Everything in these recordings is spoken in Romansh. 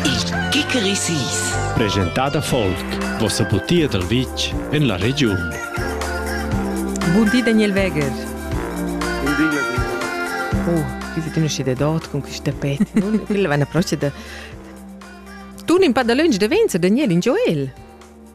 Il Kikeri Sis. Presentada folk, vossa butia dal vitg en la regiun. Bun di Daniel Weger. Bun di Daniel. Oh, qui tu ne sci de dot con questa tapet. Quella va una croce da Tu un pa da lunch de Venzo, Daniel, in Joel.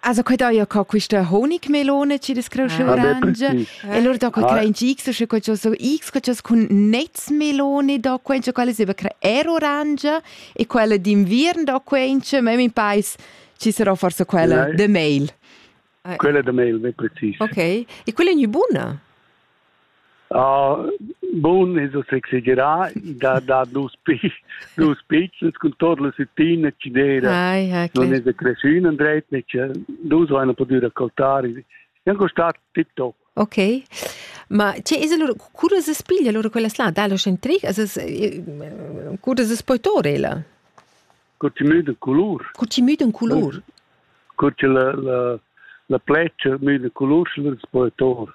Also quei daia co quista Honigmelone ci das creu orange. E lor da quei crein ci x sche quei so x quei cun netzmelone da quei cioè quella seba creer orange e quella d'inviern da quei cioè me mi pais ci sarà forse quella de mail. Quella de mail, ve precis. Ok. E quella è buna? Bun es uss exagerà, da dar dus dus pitschens cun tot la süttina chi d'eira. Ai, okay. Non es da creschün andret, nece dus vaina pudü raccoltare. E anche stat tip top. Ok, ma cioè, es allora, cura se spiglia allora quella slà dallo centric? Cura se poi tor ella? Cur ci müda culur. Cur ci müda culur? Cur ci la la la plecia müda culur, allora se poi tor.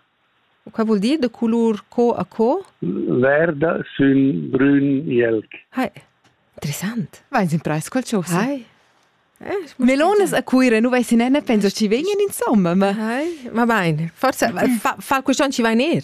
Quai vul dir da colur co a co? Verda sün brün jelg. Hai, interessant. Vais imprais quel chose. Hai. Eh, Melones a Cuira, nu vai sin ne penso ci vegnan insomma, ma Hai, ma bain. Forsa fa, fa quest'on ci vai ner.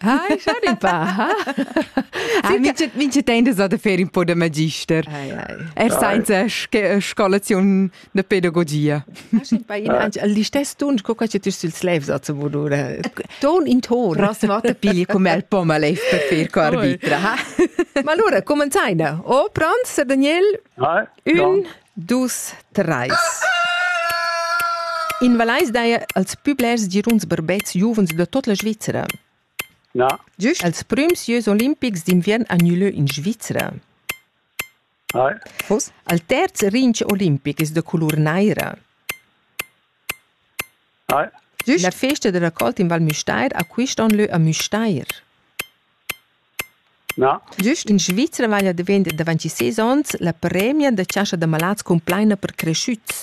Ah, schau pa. Ah, mincha temps es da fer un po da magister. Er sainza scolaziun da pedagogia. L'istess ton co che tu sul slev sa zu modura. Ton in ton. Ras vata piglia come al poma leif per fer co arbitra. Ma allora, commenzai da. Oh, pronto, Sir Daniel? Un, Dus, treis. In Vallais daja als pü blers giruns barbets giuvens da tuot la Svizzera. Na. Giüst als prüms jieus olimpics d'inviern ha gnü lö in Svizzera. Hai. Vos? Al terz rinch olimpic es da colur naira. Hai. Giüst? La festa da raccolt in Val Müstair ha quist on lö a Müstair. Gist in Svizra veglia davent davant sis onns la premia da chascha da malats cumplaina per creschüts.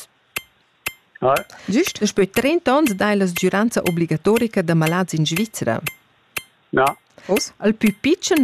Gist daspö trenta ons dai la sgüranza obligatorica da malats in Svizra. Uss, al pü pitschen